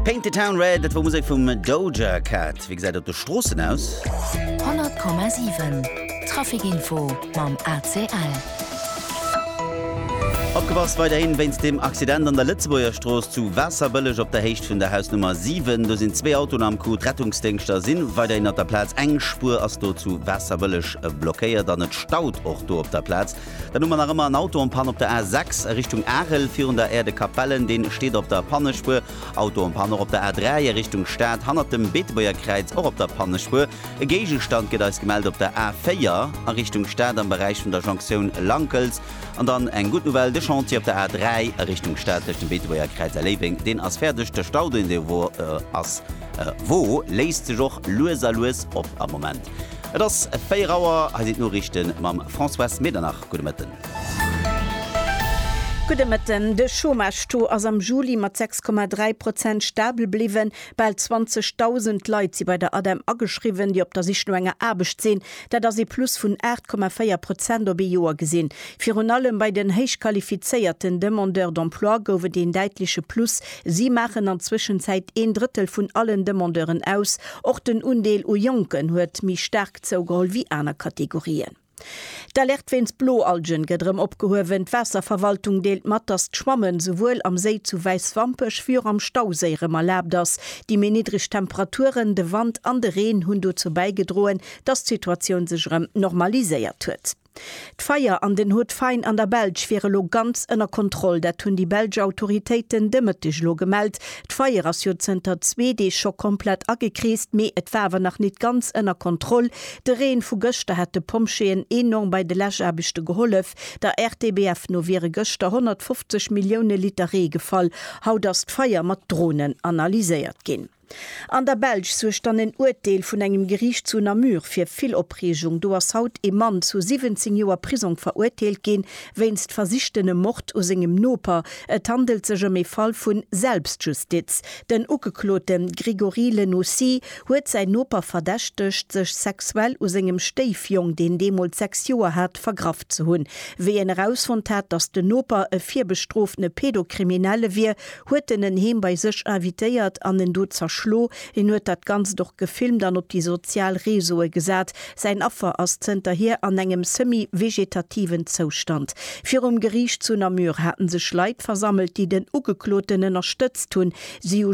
Paint the Town Red, dat wor Musek vum Doja Cat. Wéi gesäit et op de Stroossen aus? 100,7 Traficinfo mam ACL. Opgepasst weiderhin wéinst dem Accident an der Lëtzebuerger Strooss zu Waasserbëlleg op der Héicht vun der Hausnummer 7. Do sinn zwee Autoen am Coup. D'Rettungsdéngschter si weiderhin op der Plaz. Eng Spuer ass do zu Waasserbëlleg blockéiert an et staut och do op der Plaz. Dann hu mer nach ëmmer en Auto en panne op der A6 a Richtung Arel, virun der Aire de Capellen. Deen steet op der Pannespuer. Auto en panne och op der A3 a Richtung Stad, hannert dem Beetebuerger Kräiz, och op der Pannespuer. E Géigestand gëtt eis gemellt op der A4 a Richtung Stad am Beräich vun der Jonktioun Lankels. An dann eng gutt Nouvelle, de Chantier op der A3 a Richtung Stad tëscht dem Beetebuerger Kräiz a Léiweng, deen ass fäerdeg. De Stau, deen do wor, ass, wor, léisst sech och lues a lues op am Moment. Et ass 4 Auer, hei sinn d'Noriichten mam Françoise Medernach. Gudde Mëtten. Gudde Mëtten. De Chômage-Taux ass am Juli mat 6,3 Prozent stabel bliwwen. Bal 20.000 Leit si bei der ADEM ageschriwwen, déi op der Sich no enger Aarbecht sinn. Dat ass ee Plus vun 8,4 Prozent op ee Joer gesinn. Virun allem bei den héichqualifizéierten Demandeurs d'emploi gouf et een däitleche Plus. Si maachen an Zwëschenzäit een Drëttel vun allen Demandeuren aus. Och den Undeel u Jonken huet méi staark zougeholl wéi aner Kategorien. D'Alerte wéinst Bloalgen gëtt erëm opgehuewen. D'Waasserverwaltung deelt mat, datt d'Schwammen souwuel am Séi zu Wäiswampech wéi och am Stauséi erëm erlaabt ass. Déi méi niddreg Temperaturen, de Wand an de Reen hunn dozou bäigedroen, datt d'Situatioun sech erëm normaliséiert huet. D'Feier an den Hot Vine an der Belsch wiere lo ganz ënner Kontroll. Dat hunn déi belsch Autoritéiten de Mëtteg elo gemellt. D'Feier ass jo zënter zwee Deeg scho komplett agekreest, mee et war awer nach nit ganz ënner Kontroll. De Reen vu gëschter hat de Pompjeeën enorm bei de Läschaarbechte gehollef. Der RTBF no wiere gëschter 150 Millioune Liter Ree gefall. Haut ass d'Feier mat Dronen analyséiert ginn. An der Belsch suergt dann en Uerteel vun engem Geriicht zu Namur fir vill Opreegung. Do ass haut ee Mann zu 17 Joer Prisong veruerteelt ginn, wéinst versichtenem Mord u sengem Noper. Et handelt sech ëm ee Fall vu Selbstjustiz. Den Ugeklote Grégory Lenocy huet säin Noper verdächtegt, sech sexuell u sengem Stéifjong, deen deemools 6 Joer hat, vergraff ze hunn. Wéi en erausfonnt hat, datt den Noper e virbestroofene Pedocriminelle wier, huet en en heem bei sech invitéiert an en do zerschlo. En huet dat Ganzt och gefilmt an op déi sozial Reseaue gesat. Säin Affer ass zënterhier an engem semi-vegetativen Zoustand. Virum Geriicht zu Namur hate sech Leit versammelt, déi den Ugekloten ënnerstëtzt hunn. Si hu.